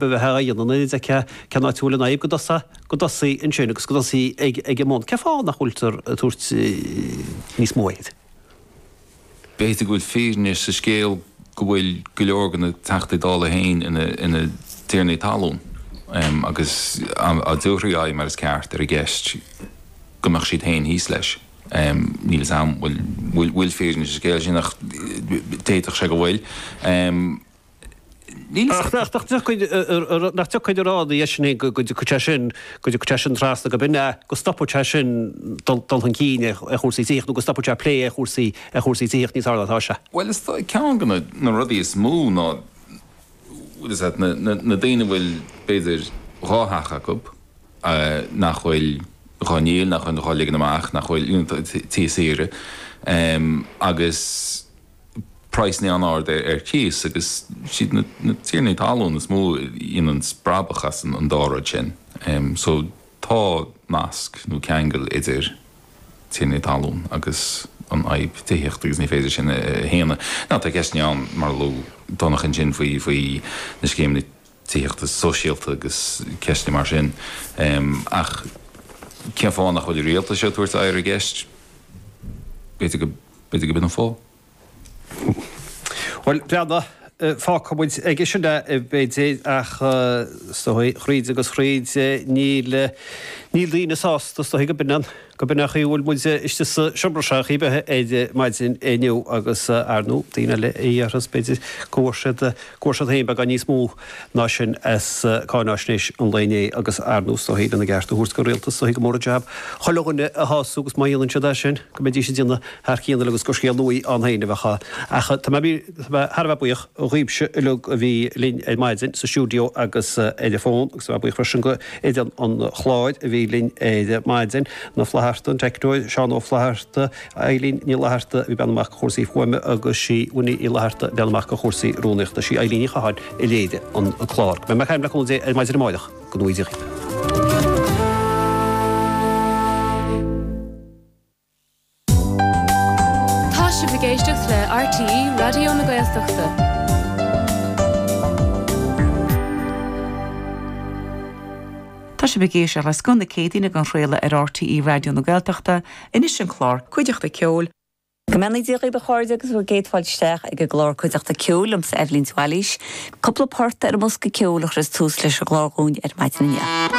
a bheith á dhéanamh in oiread is ceann áitiúil an fhadhb go dtosaí ansin agus go dtosaí ag an mbun. Cén fáth nach bhfuiltear ag tabhairt níos mó aird. B'fhéidir go bhfuil fírinne sa scéal go bhfuil go leor de na Teachtaí Dála féin ina dtiarnaí talún agus dá dtabharfaí aghaidh mar is ceart ar an gceist go mbeadh siad féin thíos leis. Níl a fhios a'm an bhfuil fírinne sa scéal sin ach d'fhéadfadh sé go bhfuil. Níl fhios ach nach dtiocfaidh nach dtiocfaidh a rá ina dhiaidh sin go go dtiocfaidh sé sin go dtiocfaidh sé sin trasna go b'in é go stopfaidh sé sin dul dul chun cinn ar ar chúrsaí tithíocht nó go stopfaidh sé plé ar chúrsaí ar chúrsaí tithíocht níos fearr ná tá sé. Bhuel is dóigh ceann de na na rudaí is mó ná bhfuil fhios a'd na na na daoine a bhfuil b'fhéidir dhá theach acu nach bhfuil dhá ndíol nach bhfuil dhá ligean amach nach bhfuil you know tithe saoire ehm agus praghsanna an-ard ar chíos, agus siad na tiarnaí talún is mó a dhéanann brabach as an dá rud sin. So tá nasc nó ceangal idir tiarnaí talún agus an fhadhb tithíochta agus ní féidir sin a shéanadh. Now tá ceisteanna ann, mar a luaigh Donncha ansin, faoi na scéimeanna tithíochta sóisialta agus ceisteanna mar sin, ach cén fáth nach bhfuil an rialtas ag tabhairt aghaidh ar an gceist, b'fhéidir go. B'fhéidir go b'in an fáth. Bhuel, breathnaigh, fágfaidh muid aige sin é, b'fhéidir, ach is dóigh, thríd agus thríd, níl, níl daoine sásta, is dóigh, go b'in an, go b'in an chaoi a bhfuil muid istigh sa seomra seo ar chaoi ar bith ar maidin inniu agus, ar ndóigh, daoine eile a dhéarfas, b'fhéidir, go bhfuair siad, go bhfuair siad féin beagán níos mó. ná sin as cáinaisnéis an lae inné agus ar ndóigh is dóichí lena gceart a thabhairt don Rialtas is dóichí gur mór an jab chuile dhuine a shású agus má dhéanann siad é sin go mbeidís ag déanamh thar cionn uilig agus gur scéal nuaí ann féin a bheadh ann. Ach tá mé thar a bheith buíoch dhaoibhse uilig a bhí linn ar maidin sa stiúideo agus ar an bhfón agus tá mé buíoch freisin d'fhoireann an chláir a bhí linn ar maidin, Na Flatharta, an teicneoir, Seán Ó Flaithearta, Eilín Ní Fhlaithearta a bhí ag breathnú amach do chúrsaí fuaime agus sí Winnie Uí Fhlaithearta a bhreathnaigh amach do chúrsaí rúnaíochta. Sí Eilín Ní Chatháin a léirigh an clár. Beidh mé ag caint le cúnamh Dé ar maidin amáireach. Go nuige. Tá sibh ag éisteacht le RTÉ Raidió na Gaeltachta. Tá sibh ag éisteacht le Scoth na Céadaoin á athchraoladh ar RTÉ Raidió na Gaeltachta Anois an clár, Cuideachta Ceoil. Go mbeannaí Dia dhaoib a chairde agus bhur gcéad fáilte isteach ag an gclár Cuideachta Ceoil, liomsa Eibhlín de Bhailís. Cúpla port ar an mbosca ceoil a chuireas tús leis an gclár dhúinn ar maidin inniu.